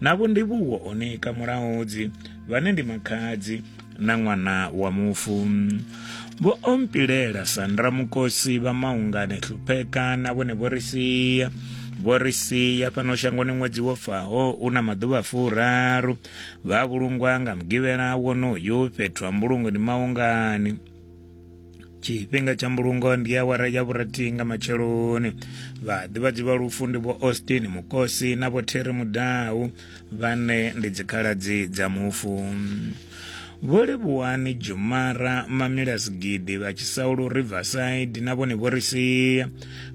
na vhondivhuwo o nika mulaudzi vhane ndi makhadzi na ṅwana wa mufu vho ompilela sandra mukosi vha maungane hlupheka na vhone vho ri sia vho ri sia fhano shangoni ṅwedzi wo faho u na maḓuvha furaru vha vhulungwa nga mugivhela wonoyu fhethu ha mbulungo ndi maungani tshifhinga tsha mbulungo ndi awara ya vhurathi nga matsheloni vhaḓivhadzi vha lufu ndi vho austin mukosi na vho terry mudau vhane ndi dzikhaladzi dza mufu vho livhuwani jumara mamila sigidi vha tshisaulu riverside na vhone vho ri sia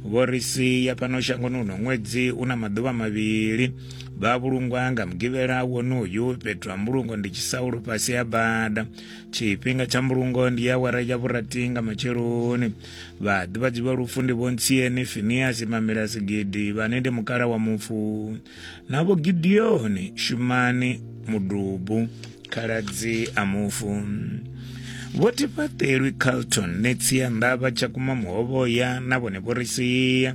vho ri sia fhano shangoni uno ṅwedzi u na maḓuvha mavhili vha vhulungwa nga mugivhela wonoyu fhethu ha mbulungo ndi tshisaulu fhasi ha bada tshifhinga tsha mbulungo ndi awara ya vhurathi nga matsheloni vhaḓivhadzi vha lufu ndi vhontsieni finiasi mamela sigidi vhane ndi mukala wa mufu na vho gideoni shumani mudubu khaladzi a mufu vho tifhaṱelwi carlton netsia ndavha tsha kuma muhovhoya na vhone vho ri sia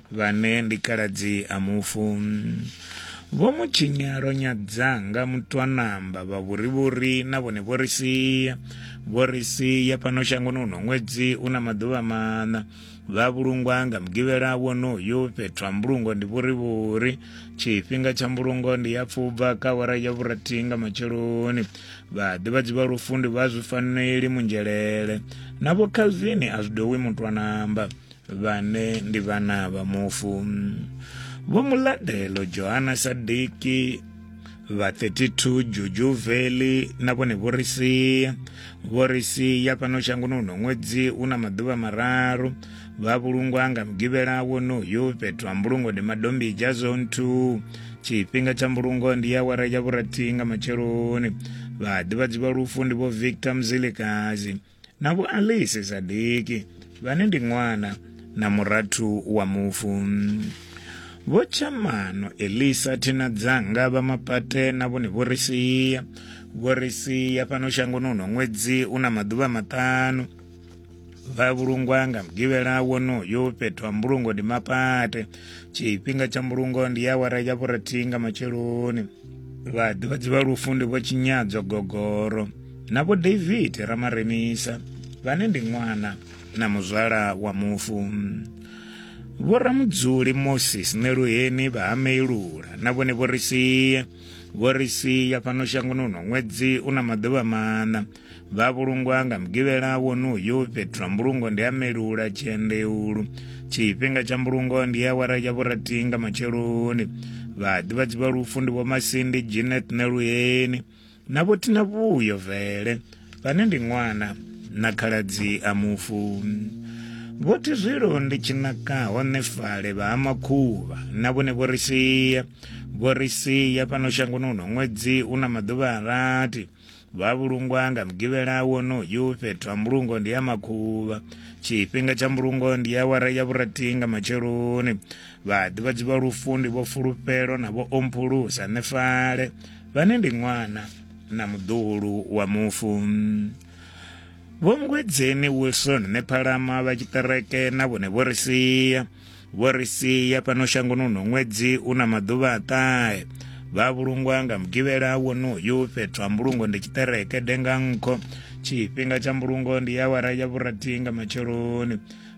Vhane ndi khaladzi a mufu. Vho mu tshinya ro nyadza nga mutwanamba vha vhurivhuri na vhone vho ri sia. Vho ri sia fhano shangoni uno ṅwedzi u na maḓuvha maṋa. Vha vhulungwa nga mugivhela wonoyu fhethu ha mbulungo ndi vhurivhuri. Tshifhinga tsha mbulungo ndi ya pfubva ka awara ya vhurathi nga matsheloni. Vha ḓivhadzi vha lufundi vha zwi faneli munzhelele. Na vho Calvin a zwi dowi mutwanamba. vhane ndi vhana vha mufu vho muladelo johana sadiki vha 32 juju veli na vhone vho ri sia vho ri sia fhano shangoni uno ṅwedzi u na maḓuvha mararu vha vhulungwa nga mugivhela wonoyu fhethu ha mbulungo ndi madombija zone 2 tshifhinga tsha mbulungo ndi ya wara ya vhurathi nga matsheloni vhaḓivhadzi vha lufu ndi vho victor mzilikazi na vho Alice Zadeki vhane ndi ṅwana na murathu wa mufu vho tshamano elisa thina dzanga vha mapate na vhone vho ri sia vho ri sia fhano shangoni uno ṅwedzi u na maḓuvha maṱanu vha vhulungwa nga mugivhela wonoyo fhethu ha mbulungo ndi mapate tshifhinga tsha mbulungo ndi ya wara ya vhurathi nga matsheloni vhaḓivhadzi vha lufu ndi vho tshinyadzo gogoro na vho david ramaremisa vhane ndi ṅwana na muzwala wa mufu vho ramudzuli moses ṋeluheni vha ha meilula na vhone vho ri sie vho ri sia fhano shangoni uno ṅwedzi u na maḓuvha maṋa vha vhulungwa nga mugivhela wonoyu fhethu ha mbulungo ndi a melula tshiendeulu tshifhinga tsha mbulungo ndi awara ya vhurathi nga matsheloni vhaḓivhadzi vha lufu ndi vhomasindi janet na luyeni na vhothina vhuyo vele vhane ndi ṅwana na khaladzi a mufu vhothi zwilo ndi tshinakaho nefale vha ha makhuvha na vhone vho ri sia vho ri sia fhano shangoni uno ṅwedzi u na maḓuvha a rathi vha vhulungwa nga mugivhela wonoyu fhethu ha mbulungo ndi ya makhuvha tshifhinga tsha mbulungo ndi ya wara ya vhurathi nga matsheloni vhaḓivhadzi vha lufu ndi vho fulufhelo na vho omphulusa nefale vhane ndi ṅwana na muḓuhulu wa mufu vho mngwedzeni wilson nephalama vha tshiṱereke na vhone vho ri sia vho ri sia fhano shangoni uno ṅwedzi u na maḓuvha a ṱahe vha vhulungwa nga mugivhela wonoyu fhethu ha mbulungo ndi tshiṱereke denga nkho tshifhinga tsha mbulungo ndi awara ya vhurathi nga matsheloni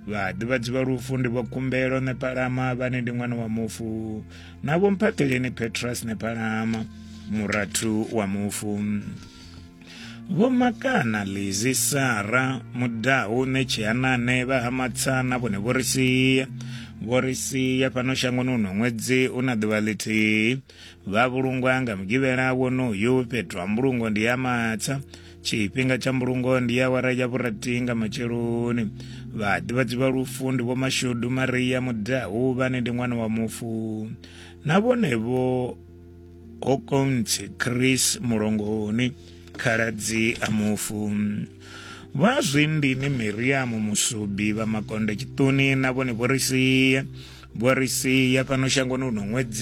vhaḓivhadzi vha lufu ndi vho kumbelo nepalama vhane ndi ṅwana wa mufu na vho mphaṱheleni petrus nepalama murathu wa mufu Vho Makana Lizi Sara Mudahu Netshianane vha ha Matsana vhone vho ri sia vho ri sia fhano shangoni uno ṅwedzi u na ḓuvha ḽithihi vha vhulungwa nga mugivhela wonoyu fhethu ha mbulungo ndi ya matsa tshifhinga tsha mbulungo ndi ya wara ya vhurathi nga matsheloni vhaḓivhadzi vha lufu ndi vho mashudu maria mudahu vhane ndi ṅwana wa mufu na vhonevho kokontsi chris mulongoni khaladzi a mufu vha zwindini miriamu musubi vha makonde tshiṱuni na vhone vho ri sia vho ri sia fhano shangoni uno ṅwedzi